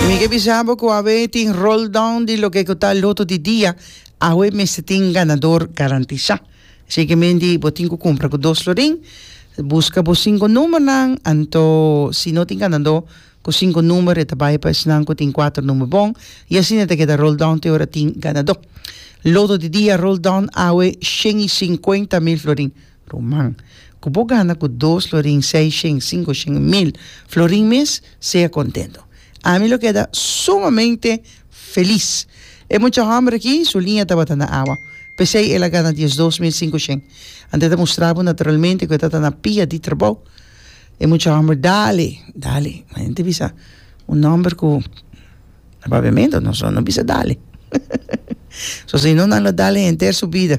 Mi ke bisa bo ku awe tin roll down di loke ku ta loto di dia awe mester tin ganador garantisá. Siguiementi bo tin ku kumpra ku dos florin buska bo sinku numbernan anto si no tin ganador ku sinku number e ta bai pa esnan ku tin kuater number bon i asina e ta keda roll down te ora tin ganador. Loto di dia roll down awe shen i sinkuenta mil florin. Ruman, ku bo gana ku dos florin, seis shen, sinku shen i mil florin mes, sea kontentu. Ami lo keda sumamente felis. E mucha hòmber aki, su liña tabata na awa. P'esei el a gana diesdos mil sinku shen. Ante e ta mustra bo naturalmente ku e tabata na pia di trabou. E mucha hòmber dale, dale. Ma e nta bisa un hòmber ku a papiamentu, no, no bisa dale. Sosin no nan lo dale henter su bida.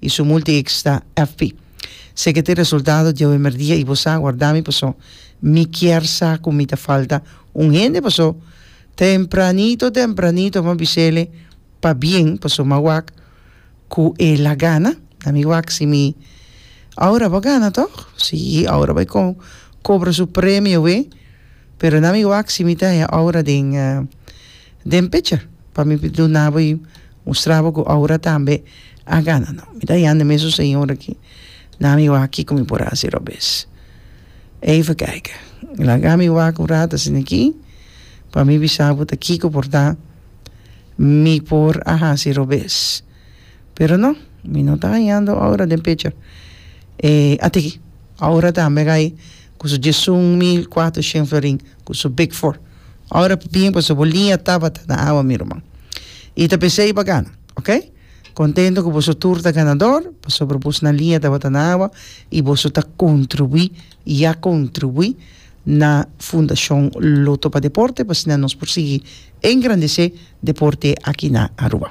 i su multi ex ta FP. Se ke tin resultado diawe merdia i bo sa guarda mi paso mi kier sa ku mi ta falta un hende paso tempranito tempranito mi a bisele pa bien paso mi a wak ku e la gana na mi wak si mi Aura bo a gana tog si Aura bai kobra su premio wee. Pero na mi wak si mi ta haña Aura den den pecha pa mi duna bo y mustra bo cu Aura tambe a gana no mi ta hañando mesun señor aki na mi wak kico mi por a haci robes even kijk laga mi wak un rato asina aki pa mi bisa bo ta kico por ta mi por a haci robes pero no mi no ta hañando Aura den pecha e a tiki Aura tambe gai ku su diesun mil kuater shen florin ku su big four ora pa bien paso bo liña tabata na awa mi ruman i ta p'esei i bo a gana ok kontento ku boso tur ta ganador pasobra boso na liña tabata na awa i boso ta kontribuí ya kontribuí na fundashon loto pa deporte pa asina nos por sigui engrandesé deporte aki na Aruba.